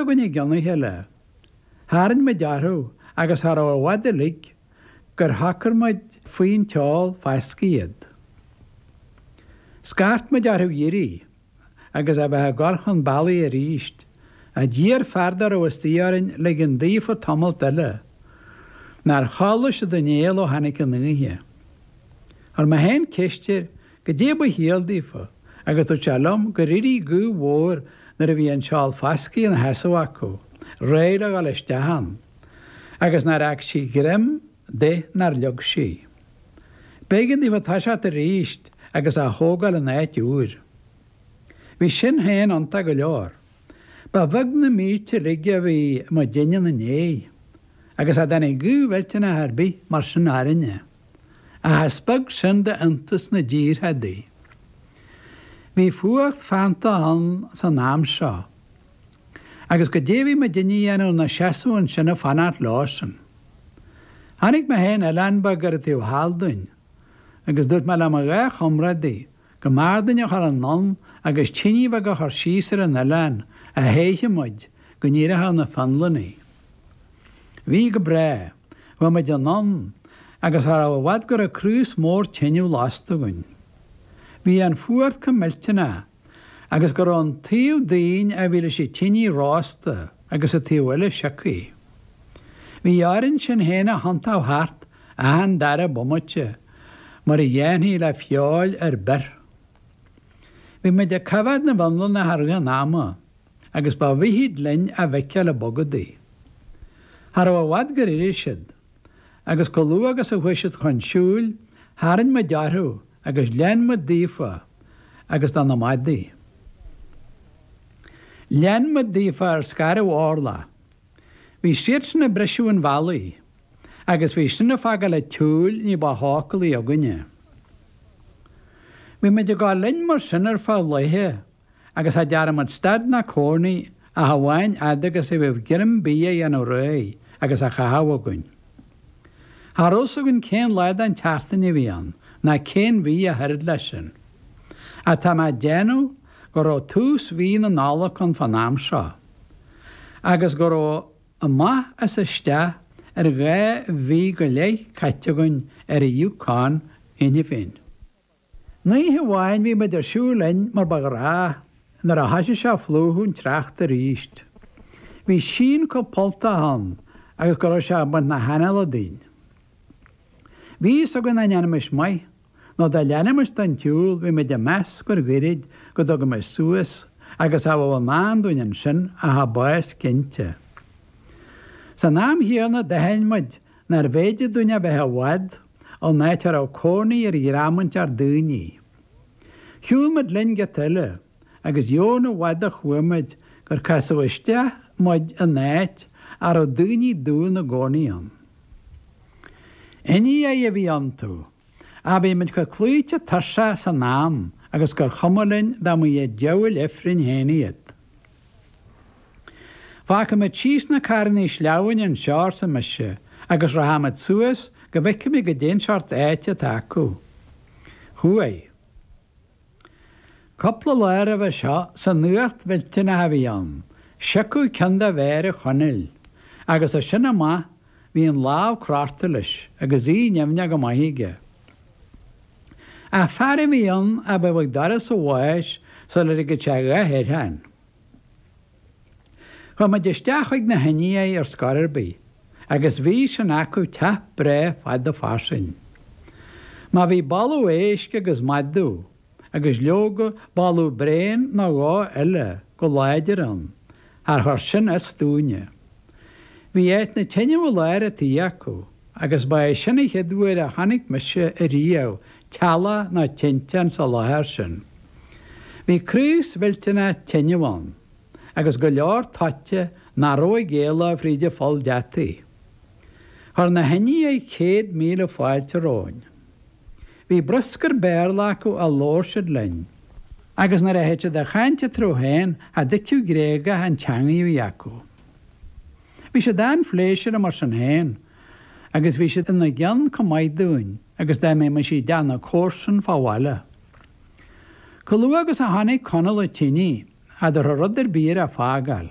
againn i gcionn oíche eile. Tharraing muid orthu agus cha rabh i bhfad uilig gur shocair muid faoin tseál fascaidh iad. Scairt muid orthu a dh'éirí agus a bheith ag cur chun bealaigh aríst. Ach d'iarr fear dá rabh istoigh orainn ligean daofa tamalt eile. Nár chodlaigh siad aon néal ó tháinic an oíche. Chuir mé féin ceist air goidé ba chiall daofa, agus dúirt sé liom gur éirigh gaoth mhór nuair a bhí an seál fascaidh ina sheasamh acu, réidh le dhul isteach ann, agus nár fhág sí greim de nár leag sí. B'éigean daofa toiseacht arís agus á thógáil in áit úr. Bhí sin féin iontach go leor. Ba bheag na mílte uilig a bhí muidinne ina ndéidh, agus cha dtáinig gaoth mhillteanach ar bith mar sin orainne. Ach is beag sin de iontas na dtíortha adaí. Bhí fuacht feannta ann san am seo, agus goidé a bhí muidinne a dhéanamh na seasamh annsin ag fanacht leo-san. Chonaic mé féin oileán beag ar an taobh thall dúinn, agus dúirt mé le mo dhá chomrádaí go mb'fhearr dúinn a dhul anonn agus tinidh bheag a chur síos ar an oileán a théifeadh muid go n-éireochadh na Fionlannaigh. Bhí go breagh. Chuaigh muid anonn agus cha rabh i bhfad go rabh craos mór teineadh lasta againn. Bhí an fuacht chomh millteanach agus go rabh an taobh dínn a bhí leis an tinidh rósta agus an taobh eile sioctha. Bhí orainn sinn fhéin a thionntadh thart achan dara bomaite mar a dhéanfaí le feoil ar bith. Bhí muid ag coimheád na bhFionlannach i rith an ama, agus ba mhithid linn a bhfeiceáil ag bogadaigh. Cha rabh i bhfad gur éirigh siad, agus chomh luath agus a chuaigh siad chun siúil, tharraing muid orthu agus lean muid daofa agus do na madaí. Lean muid daofa ar scairbh orlach. Bhí siadsan ag briseadh an bhealaigh, agus bhí sin ag fágáil an tsiúil ní ba shócúlaí againne. Bhí muid ag gabháil linn mar sin ar feadh laethe agus cha dtearn muid stad ná cónaí ach amháin fhad agus a bhíodh greim bídh á dhéanamh réidh agus á chaitheamh againn. Cha rabh a fhios againn cén lá de'n tseachtain a bhí ann ná cén mhí ach oiread leis sin. Ach tá mé ag déanamh go raibh tús mhí na Nollag ann fán am seo. agus go raibh amach is isteach ar dhá mhí go leith caite againn ar an Yukon cheana féin. Oíche amháin bhí muid ag siúl linn mar ba ghnách, nuair a thoisigh sé a phlúchadh an tsneachta arís, bhí síon chomh polltach ann agus go raibh sé ag baint na hanála dínn. Bhí fhios againn nach ndéanfaimis maith Nó dá leanfaimis don tsiúl bhí muid ag meas gur ghoirid go dtugaimis suas agus cha bheadh i ndán dúinn ansin ach a bás cinnte. San am chéanna d'aithin muid nárbh fhéidir dúinn a bheith i bhfad ón áit a raibh cónaí ar dhream inteacht daoiní. Shiúl muid linn giota eile. agus dheamhan i bhfad a chuaigh muid gur casadh isteach muid in áit a raibh daoine dubha 'na gcónaí ann. Indiaigh a bhí iontu, ach bhí muid chomh cloíte tuirseach san am agus gur chuma linn dá mba iad diabhail ifrinn féin iad. Fágfaidh muid síos na carrannaí sleamhnáin anseo, arsa mise, agus rachaidh muid suas go bhfeicfimid goidé'n seort áite atá acu. Chuaigh. Cupla lá roimhe seo san fhuacht mhillteanach a bhí ann, siocadh ceann de mhéara Chonaill agus as sin amach bhí an lámh crochta leis agus í nimhneach go maith aige. Ach fear a bhí ann a bheadh ag doras a bháis sula ligfeadh sé a dhath air féin. Chuaidh muid isteach chuig na hIndiaigh ar scor ar bith agus bhí sin acu teach breá fada fairsing. Má bhí boladh éisc agus madadh agus leoga boladh bréan nó dhó eile go láidir ann char chuir sin as dúinne. Bhí áit na teineadh i lár a tighe acu agus ba é sin a chéad uair a chonaic mise ariamh teallach ná tinteán sa láthair sin. Bhí craos millteanach tineadh ann, agus go leor toite ná raibh ag éaló fríd a pholl deataigh. Chuir na hIndiaigh céad míle fáilte romhainn. Bhí bruscar Béarla acu a labhair siad linn, agus nuair a théadh siad a chaint eatarthu féin cha dtuigfeadh Gréagach an teangaidh a bhí acu. Bhí siad an-phléisiúrtha mar sin féin, agus bhí siad ina gceann comh maith dúinn. Agus dá mbeimis i dteach na comharsan fá bhaile. Comh luath agus a chonaic Conall a tinidh, cha dtabharfadh rud ar bith air a fágáil.